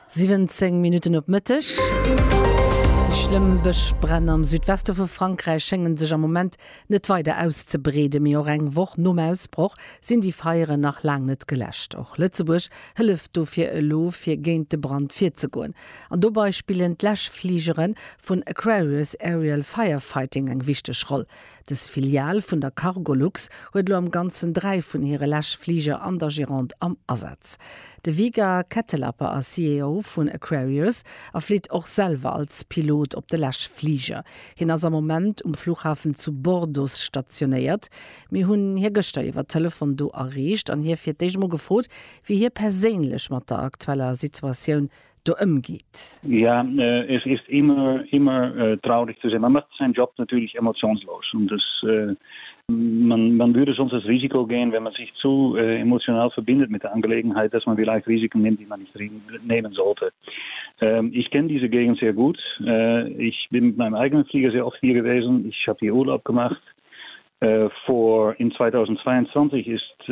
17 Minutten op Mëtteg. Déi schlëmm Bëschbränn am Südweste vu Frankräich schéngen sech am Moment net weider auszebreeden. Mee och eng Woch nom Ausbroch sinn déi Feieren nach laang net geläscht. Och Lëtzebuerg hëlleft dofir elo, fir géint de Brand virzegoen. An dobei spillen d'Läschfligere vun Aquarius Aerial Firefighting eng wichteg Roll. Dës Filial vun der Cargolux huet elo am Ganzen dräi vun hire Läschfliger an der Gironde am Asaz. De Viga Kettelapper ass CEO vun Aquarius a flitt och selwer als Pilot op de Läschfliger. Hien ass am Moment um Fluchhafen zu Bordeaux stationéiert. Mir hunn hie gëschter iwwer Telefon do erreecht an hie fir d'éischt emol gefrot, wéi hie perséinlech mat der aktueller Situatioun do ëmgeet. Ja, es ist immer, immer traurig zu sehen. Man macht seinen Job natürlich emotionslos und es, man, man würde sonst das Risiko gehen, wenn man sich zu emotional verbindet mit der Angelegenheit, dass man vielleicht Risiken nimmt, die man nicht nehmen sollte. Ich kenne diese Gegend sehr gut. Ich bin mit meinem eigenen Flieger sehr oft hier gewesen. Ich habe hier Urlaub gemacht. Vor, in 2022 ist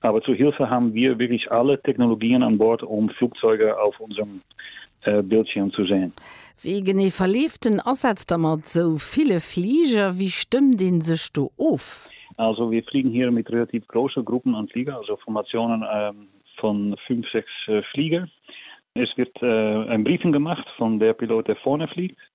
Aber zur Hilfe haben wir wirklich alle Technologien an Bord, um Flugzeuge auf unserem Bildschirm zu sehen. Wéi genee verleeft den Asaz da mat sou ville Fliger? Wéi stëmmt een sech do of? Also wir fliegen hier mit relativ große Gruppen an Fliger, also Formationen von fünf, sechs Fliger. Es wird ein Briefing gemacht von der Pilot der vorne fliegt.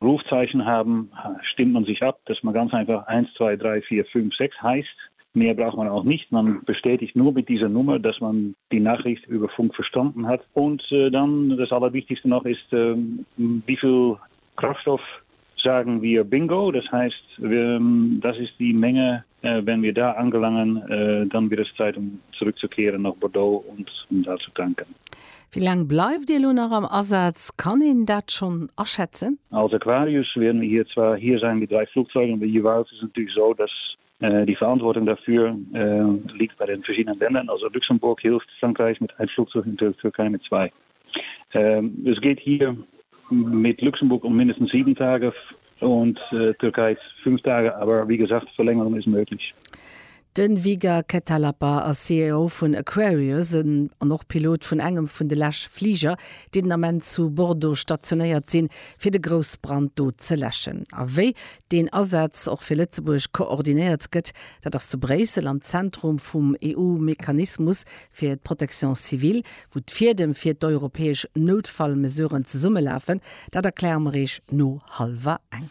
Rufzeichen haben, stimmt man sich ab, dass man ganz einfach eins, zwei, drei, vier, fünf, sechs heisst. Mehr braucht man auch nicht. Man bestätigt nur mit dieser Nummer, dass man die Nachricht über Funk verstanden hat. Und dann, das Allerwichtigste noch ist, wie viel Kraftstoff sagen wir Bingo, das heißt, das ist die Menge, Wenn wir da angelangen, dann wird es Zeit, um zurückzukehren nach Bordeaux und uns all zu tanken. Wéi laang bleift Dir elo nach am Asaz? Kann een dat schonn aschätzen? Als Aquarius wäerten wir hier zwar hier sein mit drei Flugzeugen, aber jeweils ist es natürlich so, dass die Verantwortung dafür liegt bei den verschiedenen Ländern. Also Luxemburg hilft Frankreich mit ein Flugzeug und Türkei mit zwei. Ähm, es geht hier mit Luxemburg um mindestens sieben Tage und äh, Türkei fünf Tage, aber wie gesagt, Verlängerung ist möglich. Den Viga Ketalapa ass CEO vun Aquarius an och Pilot vun engem vun de lech Fliger, déi den Ament zu Bordeaux stationéiert sinn, fir de Groussbrand do ze läschen. A wéi deen Asaz och fir Lëtzebuerg koordinéiert gëtt, dat ass zu Bréissel am Zentrum vum EU-Mechanismus fir d'Protection civile, wou d'Fiedem fir d'europäesch Noutfallmesuren zesummelafen, dat erkläre mer Iech no hallwer eng.